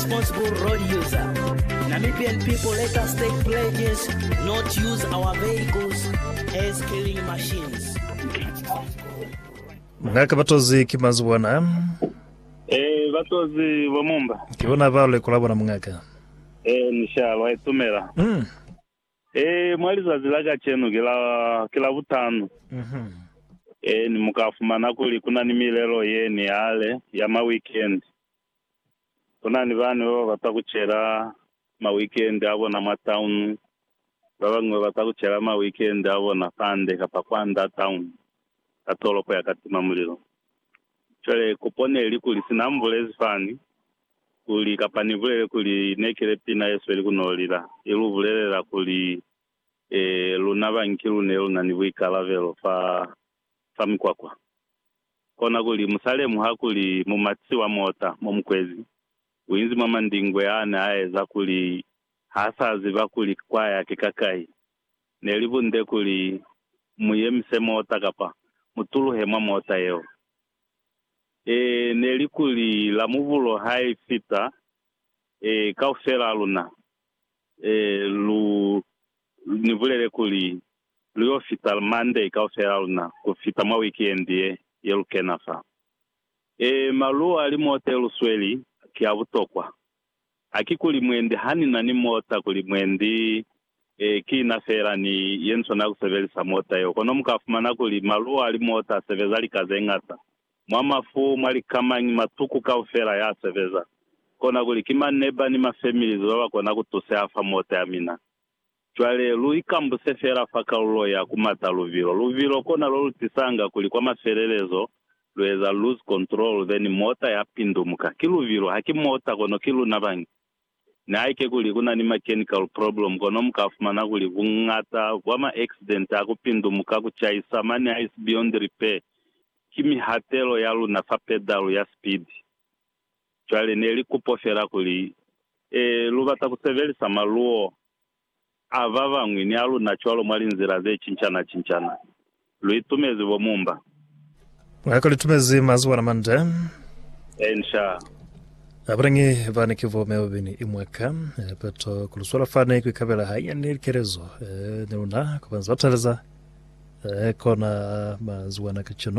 Responsible road user. Namibian people let us take pledges not use our vehicles as killing machines. Ngaka batozi ki mazi bona. Eh, batozi bo mumba. Ki bona ba leko la bona mungaka. Eh, nishalo ai tumela. Mm. Eh, mwa lizazi la kachenu ke la ke la butano. Mhm. Eh, ni muka fumana kuli kuna ni milelo ye ni hale ya ma weekend. Kunani bana baba bata kucela ma weekend abona mwa town, babañwi babata kucela ma weekend abona fande kapa kwanda town ka tolopo ya katima mulilo. Cwale kupo neli kuli, sina mbulezi fani kuli, kapa nibulele kuli, nekile pina yesweli kunolila, ilubulelela kuli, ee, luna banki lune lunani buikalabelo fa sa mikwakwa. Kona kuli musa lemuha kuli mumatisi wa mota mo mukwezi uinzi mwa mandingwe ane aeza kuli hasa ziba kuli kwa ya ki ka kai. Neli bunde kuli mu yemise mota kapa mu tuluhe mwa mota yeo. Ee, neli kuli la mubulo ha i fita, ee, kaufel'a luna, ee, lu ni bulele kuli lu y'o fita Monday kaufela luna ku fita mwa wikiendi ye, ye lu kena fa. Ee, maluo a limote lu sweli ki a butokwa. Haki kuli mwendi ha ni na ni mota kuli mwendi, ee, ki na feela ni ye ni swanela ku sebelisa mota yeo. Kono mu ka fumana kuli maluo a limota a sebeza lika ze ñata, mwa mafu, mwa likamañi, matuku kaufela ya sebeza. Kona kuli ki maneba ni mafemilizi ba ba kona ku tuseha fa mota ya mina. Cwale, lu ikambuse fela fa kalulo ya ku mata luvilo. Luvilo kona lo lu tisanga kuli kwa mafelelezo lu eza lose control, then mota ya pindumuka. Ki luvilo, ha ki mota, kono ki luna bañi. Nihaike kuli ku na ni mechanical problem, kono mu ka fumana kuli buñata bwa ma accident a ku pindumuka, ku caisa, mane ha isi beyond repair, ki mihatelo ya luna fa pedal ya sipidi. Cwale ne li kupo fela kuli, Ee, lu bata ku sebelisa maluo a ba bañwi ni a luna cwalo mwa linzila ze cincana-cincana. Lu itumezi bo Mumba. Mwa ka lu itumezi mazwana mande. Enca. Abalangi bani ki bo Melvin i mwa ka. Ee, peto ku lu swala fani ku ikabela hanyani likelezo, ee, ni luna, ku ba nza taleza, ee, kona mazwana kacenu.